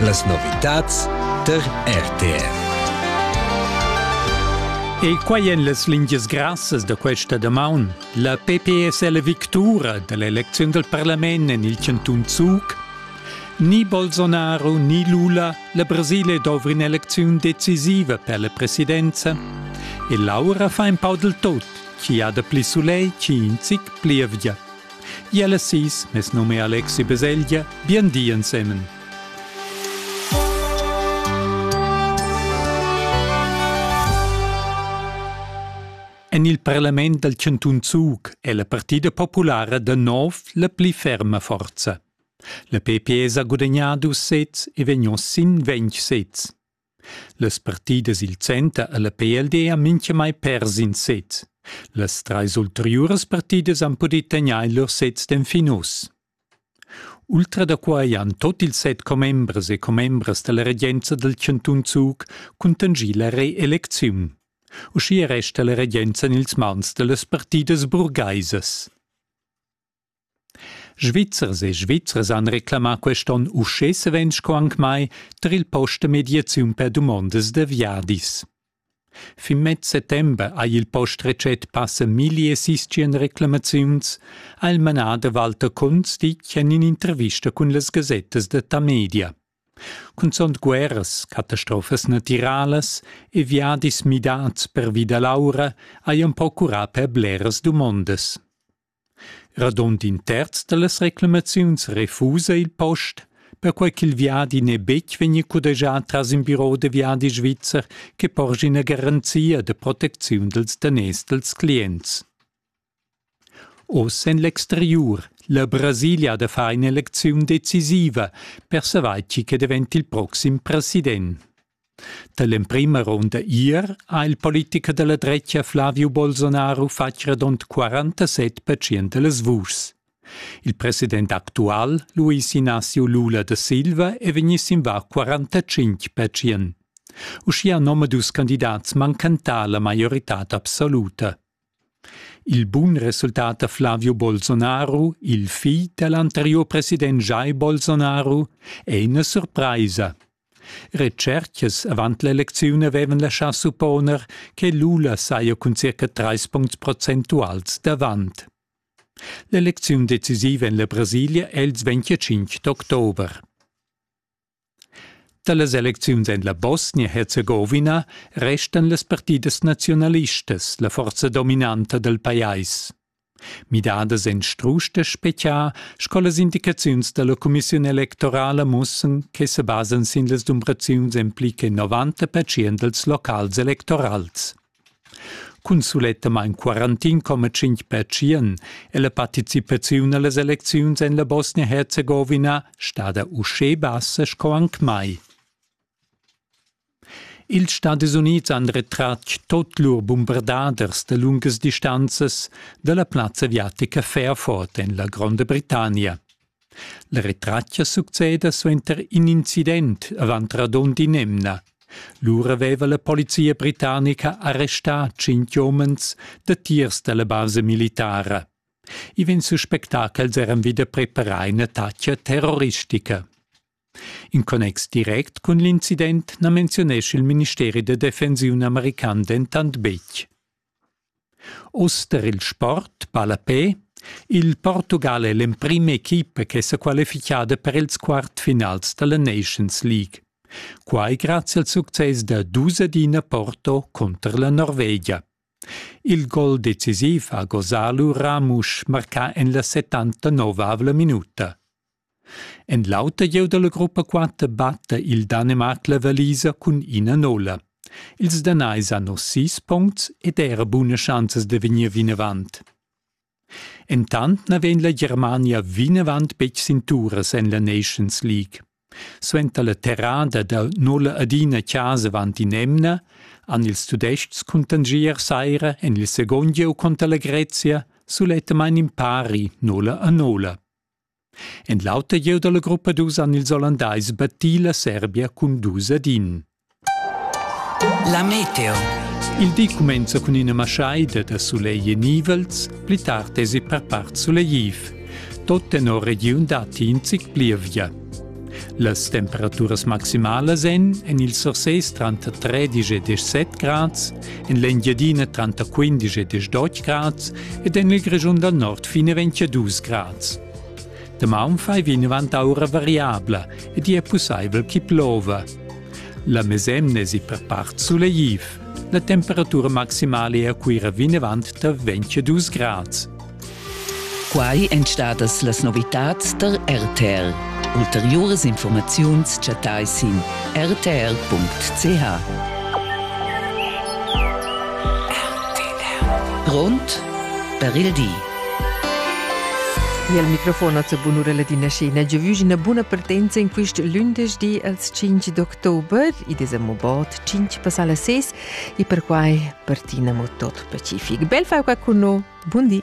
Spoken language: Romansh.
Las novitads tar RTR. E quai en las lingias grassas da questa damaun. La PPS è la victura da l'elecziun dal parlament en il chantun Zug. Ni Bolsonaro ni Lula, la Brasile dovri un'elecziun decisiva per la presidenza. E l'aura fa in pau del tot, chi ha da pli soleil, chi in zic pli evia. Iel e sis, mes num è Alexi Beseglia, bien di ensemen. En il parlament dal Cantun Zug è la partida populara da nov la pli ferma forza. La PPE ha gudagnà dus sets e vegn sin ventg sets. Las partidas il center e la PLD han mintgamai pers in sez. Las trais ulteriuras partidas han pudì tegnair lur sez d'enfin uss. Ultra da quai han tot ils set commembres e commembras da la regenza dal chantun Zug cuntanschì la reelecziun. Uschia resta la regenza en ils mans da las partidas burgaisas. Svizzers e Svizzers han reclamà quest onn uschè savens sco anc mai tar il post da mediaziun per dumondas da viadis. Fin mez settember ha il post recent passa milli e sistien reclamaziuns, ha il manader Walter Kunz ditg en in'intervista cun las gasettas da Tamedia. Cunzunt guerras, catastrofas natiralas e viadis midads pervi da l'aura hajan procurà per bleras dumondas. Radund in terz dallas reclamaziuns refusa il post, perquei ch'il viadi n'è betg vegnì cudegià tras in biro da viadi svizzer che porschi ina garanzia da protecziun dals daners dals clients. Oz en l'exteriur la Brasilia da far in'elecziun decisiva per savair chi che davent il proxim president. Dall'emprema ronda ier ha il politicher dalla dretga Flavio Bolsonaro fatg radund 47 pertschient dallas vuschs. Il president actual, Luis Inácio Lula da Silva, è vegni sin va 45 pertschient. Uschia nomadus candidats mancan ta la maioritad absoluta. Il bun resultat da Flavio Bolsonaro, il figl dall'anteriur president Jair Bolsonaro, è ina surpraisa. Retschercas avant l'elecziun avevan laschà supponer che Lula saja cun circa trais puncts procentuals davant. L'elecziun decisiva en la Brasilia è il 25 d'october. Da las elecziuns en la Bosnia-Herzegowina restan las partidas nazionalistas la forza dominanta dal pajais. Midadas en strusch da spechiar sco las indicaziuns da la cumissiun electorala mussan che se basan sin las dumbraziuns en pli che 90 percent dals locals electorals. Cun sulettamain 41,5% è la participaziun a las elecziuns en la Bosnia-Herzegowina stada uschè bassa sco anc mai. Ils Stadis Unids han retratg tot lur bumberdaders da lungas distanzas dalla plazza aviatica Fairford en la Gronda Britannia. La retratga succeda suenter in incident avant radund in'emna. Lura aveva la polizia britannica arrestà tschintg umens datiers dalla basa militara. I vegn suspectà ch'els eran vida preparà ina taccia terroristica. In connex direct cun l'incident na menziunescha il ministeri da defensiun american dentant betg. Oz per il sport ballapé il Portugal è l'emprima equipa che s'è qualifichada per ils quartfinals da la Nations League. Quai grazie al success da dus ad ina Porto contro la Norvegia. Il gol decisiv ha Gosalu Ramusch marcà en la 79 minuta. En l'auter gieu dalla gruppa quatter batta il Danemarc la valisa cun ina nola. Ils Danais hanno sis puncts ed era buna schanzas da vegnir vinavant. Entant na vegn la Germania vinavant betg sin turas en la Nations League. Suenter la terrada da nulla adina chasa avant in emna han ils Tudestgs cun tangier saira en il second gieu conter la Grezia suletta main in pari nulla a nulla. En l'auter gieu dalla gruppa dus han ils Ollandais battì la Serbia cun dus ad in. La meteo. Il di cumenza cun ina maschaida da sulegl e nivels, pli tard esi per part sulegliv. Tot tenor regiun datti in zic plievia. Las temperaturas maximalas èn en il Surses tranter 13 e 17 grads, en l'Engiadina tranter 15 e 18 grads ed en il Grischun dal nord fin a 22 grads. Damaun fai vinavant aura variabla ed è pussaivel chi plova. La mesemna è per part suleiv. La temperatura maximala è a Cuira vinavant tar 22 grads. Quai èn stadas las novitads tar RTR. Ulteriuras informaziuns chattai sin rtr.ch. Grond per il di. E al microfon a bunurella di Naschina giu vusch ina buna partenza in quist lündesch di als 5 d'october, i desa mo bod 5 passala 6, e perquai per Tina mo tot pacific. Bel fau qua cun no. Bundi!